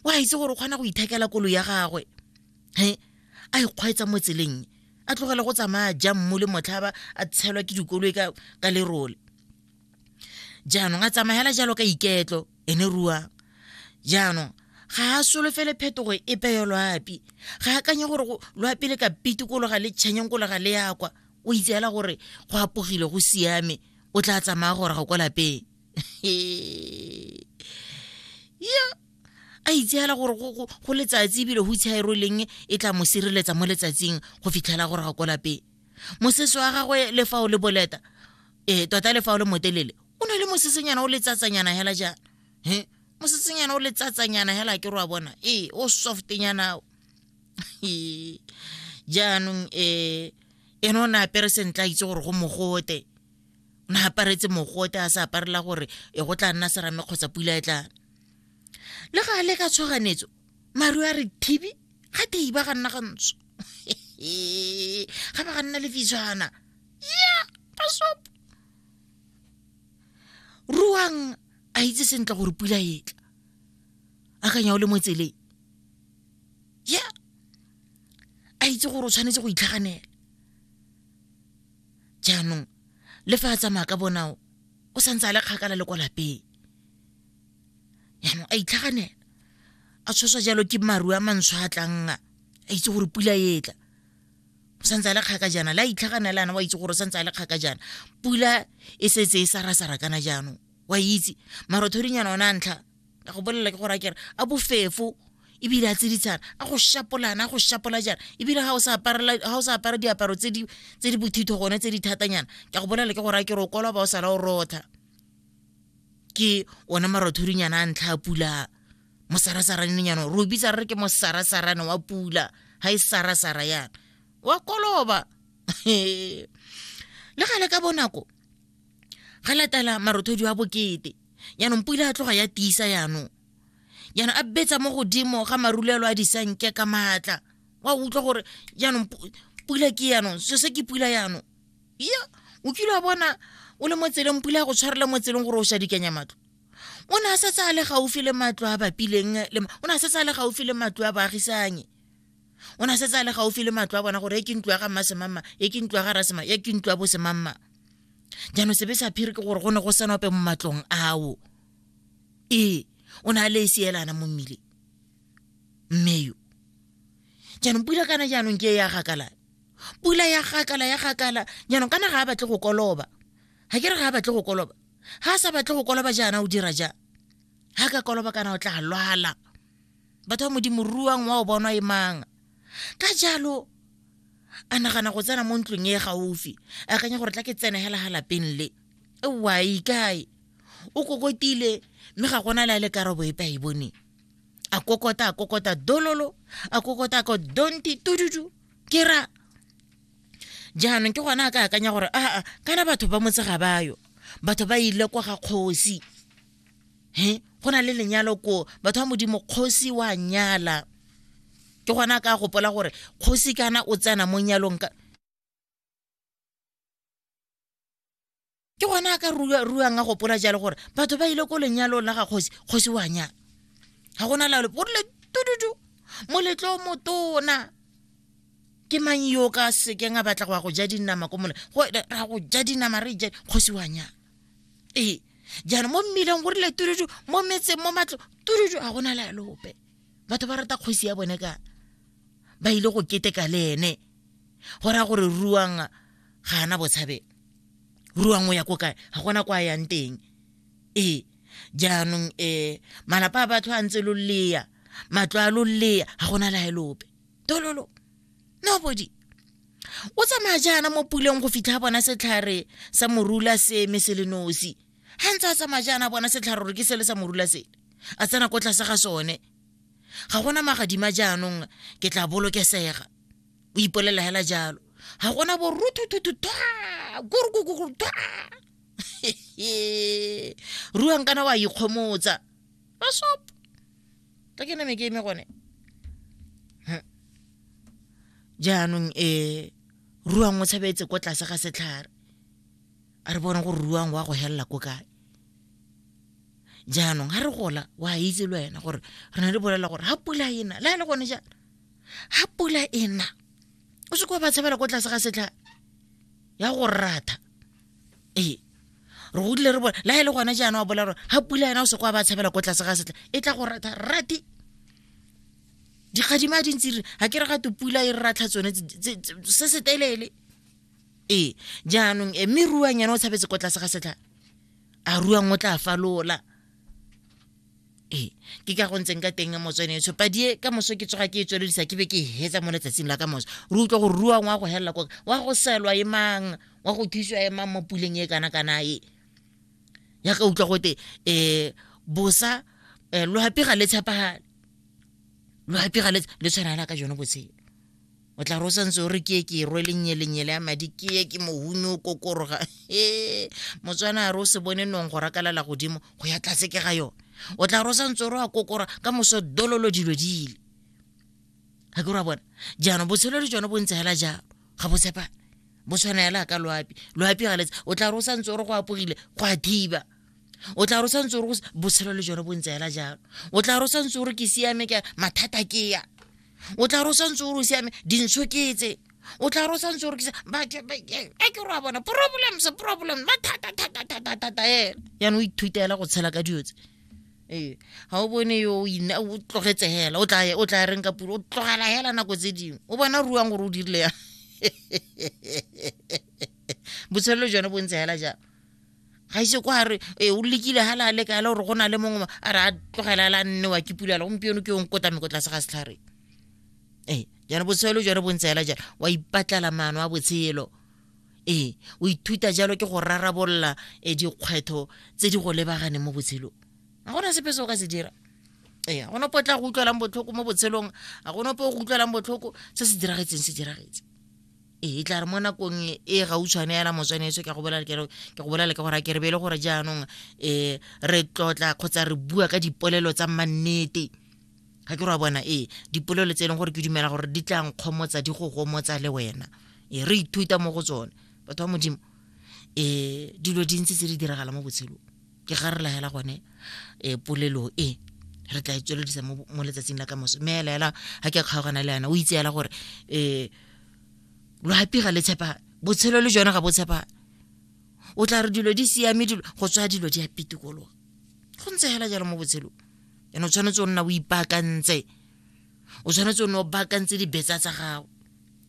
o a itse gore o kgona go ithekela kolo ya gagwe he a ikgwaetsa mo tseleng a tlogela go tsamaya jang mo le motlhaba a tshelwa ke dikoloi ka, ka lerole jaanong a tsamayela jalo ka iketlo ene ruang jaanong ga a solofele phetogo e peyo loapi ga a kanye gore loapi le ka pitikologa le tšhenyeng kologa le yakwa o itseela gore go apogile go siame o tla tsamaya gore ga kwa lapeng ya a itseela gore go letsatsi ebile go itsha e roleng e tla mo sireletsa mo letsatsing go fitlhela gore ga ko lapeng mosese wa gagwe le fa o le boleta um tota le fa o le motelele o ne le mosesenyana o letsatsanyana hela jaana he mosesenyana o letsatsanyana hela ke roa bona ee o softnyana jaanong um ene o ne apere sentle a itse gore go mogote o ne aparetse mogote a sa aparela gore e go tla nna serame kgotsa pula e tlana le ga le ka tshwaganetso maru a re thibi ga tei ba ga nna ga ntsho ga ba ga nna le fitshwana ya pasopo ruang a itse sentle gore pula e tla akanya o le mo tseleng ya a itse gore o tshwanetse go itlhaganela jaanong le fa a tsamaya ka bonao o santse a le kgakala le kwa lapeng jaanong a itlhaganela a tshoswa jalo ke maru a mantsho a tlang a itse gore pula e tla o santse a le kgaka jaana le a itlhaganela ana wa itse gore o santse a le kgaka jaana pula e setse e sarasara kana jaanong wa itse marothodinyana ona a ntlha ka go bolelela ke gore a kere a bofefo ebile a tsiditshana a go shapolana a go shapola jana ebile ga o sa apara diaparo tse di bothitho gone tse di thatanyana ke go bolela ke gore a ke re o koloba o sala o rotha ke one marothorinyana a ntlha a pula mosarasaranenyana re o bitsa re re ke mosarasarane wa pula ga e sarasara yana wa koloba le gale ka bonako ga latela marothodi wa bokete jaanong pula ya tloga ya tiisa jaanong jaanong a betsa mo godimo ga marulelo a disanke ka maatla wa utlwa gore jaanong pula ke jaanong so se ke pula jaanong ya o kile wa bona o le mo tseleng pula ya go tshwarela mo tseleng gore o sa dikanya matlo o ne a setse a le gaufi le matlo a bapileng o ne a setse a le gaufi le matlo a baagisanye o ne a setse a le gaufi le matlo a bona gore e ke ntlo ya ga mmasemamma e ke ntlo ya ga rasemang e ke ntlo ya bosemamma jaanong sebe sa phiri ke gore go ne go sena ope mo matlong ao ee o ne a le e seelana mo mmile mme yo jaanong pula kana jaanong ke e ya gakala pula ya gakala ya gakala jaanong kana ga a batle go koloba ga ke re ga a batle go koloba ga a sa batle go koloba jaana o dira ja ga ka koloba kana o tla lwala batho ba modimo ruang wa o bonwa e manga ka jalo a nagana go tsena mo ntlong e gaufi a kanya gore tla ke tsene hela ga lapeng le wai kae o kokotile mme ga gona la le karabo epe a e boneng a kokota a kokota dololo a kokota a ko donti tududu ke ra jaanong ke gona a ka akanya gore aa kana batho ba motse ga bayo batho ba ile kwa ga kgosi he go na le lenyalo ko batho ba modimo kgosi wa nyala ke gona ka gopola gore kgosi kana o tsena mo nyalong ka ke gona a ka ruang a gopola jalo gore batho ba ile ko lenyalong la ga kgosi kgosi wa nyala ga gona lalo o rile tududu moletlo motona ke mang yo ka sekeng a batla go ya go ja dinama ko mole go ra go ja dinama re ja kgosi wa nyala ee jaanong mo mmileng go rile turudu mo metseng mo matlo turudu ga gona le alope batho ba rata kgosi ya bone ka ba ile go keteka le ene go raya gore ruang ga ana botshabelo ruang o ya ko kae ga gona kwa yang teng ee jaanong um malapa a batho a ntse lo leya matlo a lo leya ga gona la elope tololo nobody o tsamaya jaana mo puleng go fitlha bona setlhare sa morula se eme se le nosi ga ntse a tsamaya jaana bona setlhare gore ke sele sa morula sele a tsena ko tlase ga sone ga gona magadima jaanong ke tla bolokesega o ipolelela hela jalo ga gona bo ruthuthuthu thwa kurukukuru thwa ruang kana wa ikgomotsa masop ka ke name ke eme gone Huh. jaanong e ruang o tshabetse ko tlase ga setlhare a re bone gore ruang wa go helela ko kae jaanong ga re gola wa itse le wena gore re na le bolela gore ga pula e na le a le gone jaana ga pula e na o se kwa ba tshabela ko tlase ga setlhare ya go ratha ee re godile re bone la e le gone jaana wa bola gore ga pula yena o se kwa ba tshabela ko tlase ga setla e tla go ratha rati dikgadima a dintsi re ga ke re gate pula e re ratlha tsone se se telele ee jaanong e mme ruang yena o tshabetse ko tlase ga setla a ruang o tla falola ee ke ka go ntseng ka teng motswene tsho padie ka moso ke tsoga ke e tswelodisa ke be ke hetsa mo letsatsing la ka moso re utlwa gore rua ngwa go helela koka wa go selwa e mang wa go thusiwa e mang mo puleng e kana kana e ya ka utlwa gote um bosa um eh, lohapi ga le tshepagale lohapi ga le tshwana la ka jone botshelo o tla re o santse o re ke e ke e rwele nnyelenyele ya madi ke ye ke mohumi o kokoroga e motswana a re o se bone nong go rakalala godimo go ya tlatse ke ga yone o tla re o santse o re wa kokora ka moso dololo dilo dile ga ke ra bona jaanong botshelo le jone bo ntse fela jalo ga bo tshepane bo tshwana fela ka loapi loapi ga letse o tla re o santse o re go apogile go a thiba o tla re o santse o re botshelo le jone bo ntse fela jalo o tla re o santse o re ke siame ke mathata ke ya o tla re o santse o re o siame dintsho ke tse o tla re o santse o rekisa a ke re a bona problems problems ba thata thata thata thata ena yana o ithutela go tshela ka dilo tse ee ga o bone yo o tlogetse hela o tla reng ka puro o tlogela hela nako tse dingwe o bona ruang gore o dirile yang botshelo jone bo ntse hela jang ga ise kwa re e o lekile ga la leka le gore go na le mongwe a re a tlogela la nnewa ke pula le gompieno ke yong kota meko tlase ga setlhare ee jone botshelo jone bontseela jalo wa ipatlala maano a botshelo ee o ithuta jalo ke go rarabolola e dikgwetlho tse di go lebaganeng mo botshelong ga gona sepe se o ka se dira ee ga gona potla go utlwelang botlhoko mo botshelong ga gona po go utlwelang botlhoko se se diragetseng se diragetse ee tla re mo nakong e gautshwane yana motswaneso ke go bolela ke go bolela ke gore a ke re be e le gore jaanong um re tlotla kgotsa re bua ka dipolelo tsa mannete ga ke re wa bona ee dipolelo tse e leng gore ke dumela gore di tlang kgomotsa di go gomotsa le wena e re ithuta mo go tsone batho ba modimo um dilo dintsi tse di diragala mo botshelong ke ga re laela gone um polelo e re tla e tsweledisa mo letsatsing la ka moso mme ela ela ga ke a kgaogana le ena o itse ela gore um loapi ga le tshepa botshelo le jone ga bo tshepa o tla re dilo di siame dilo go tswa dilo di a pitikologa go ntse fela jalo mo botshelong ene o tshwanetse o nna o ipaakantse o tshwanetse o ne o baakantse dibetsa tsa gago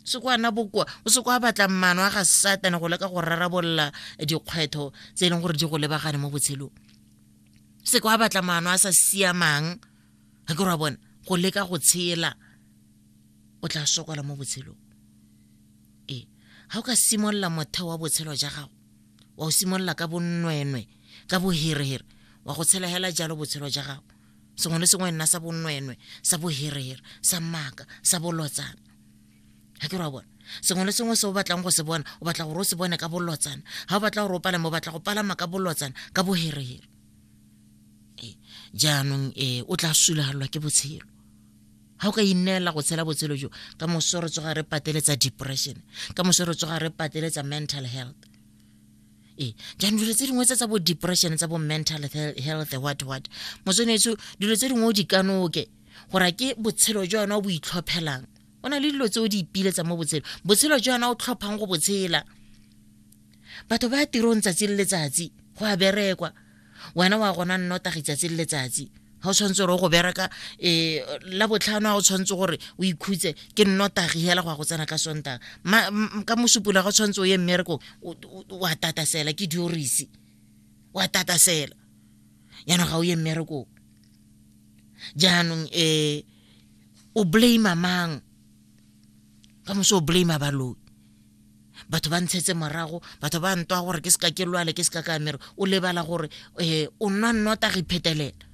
se ko ana bokoa o se ko a batla mano a ga satane go leka go rarabolola dikgwetho tse e leng gore di go lebagane mo botshelong se ko a batla mano a sa siamang ga ke ra bona go leka go tshela o tla sokola mo botshelong ee ga o ka simolola motheo wa botshelo ja gago wa o simolola ka bonnwenwe ka boherehere wa go tshela hela jalo botshelo ja gago sengwe le sengwe nna sa bonwenwe sa boherere sa maaka sa bolotsana ga ke re wa bona sengwe le sengwe se o batlang go se bona o batla gore o se bone ka bolotsana ga o batla gore o palame o batla go palama ka bolotsana ka boherere eh, jaanong um o tla sulagalelwa ke botshelo ga o ka ineela go tshela botshelo jo ka moso re tsoga re pateletsa depression ka moso re tsoga re pateletsa mental health ee jaanong dilo tse dingwe tse tsa bo depression tsa bo mental health what what motswenetso dilo tse dingwe o di kanoke gore ke botshelo jwa yona o bo itlhophelang o na le dilo tse o di ipiletsa mo botshelo botshelo jwa yona o tlhophang go botshela batho ba ya tirong tsatsi le letsatsi go a berekwa wena wa gona nnotagi tsatsi le letsatsi ga o tshwanetse gore o go bereka um la botlhano ga o tshwanetse gore o ikhutse ke nnotagi hela go ya go tsena ka sontaga ka mosupula ga o tshwanetse o ye mmerekong wa tatasela ke diorisi wa tatasela jaanong ga o ye mmerekong jaanong um o blame mang ka moso o blame baloi batho ba ntshetse morago batho ba ntwa gore ke seka ke lwale ke seka ka mere o lebala gore um o nwa nnotagi phetelela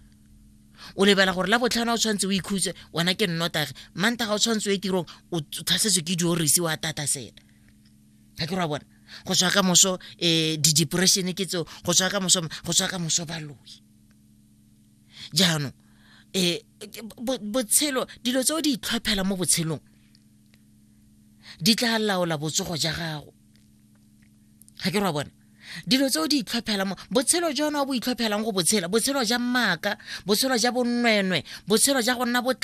o lebala gore la botlhano o tshwanetse o ikhutse wena ke nnotagi manta ga o tshwanetse o e tirong o tlhasetswe ke diorisi wa tata sela ga ke ra bona go tswa ka moso um eh, di-depression ke tseo go tswa ka moso go tswa ka moso baloi jaanong um botshelo dilo tse o di itlhophela mo botshelong di tla laola botsogo ja gago ga ke re wa bona dilo tse o di itlhophelang mo botshelo jone o bo itlhophelang go botshela botshelo ja mmaka botshelo ja bonnwenwe botshelo ja go nna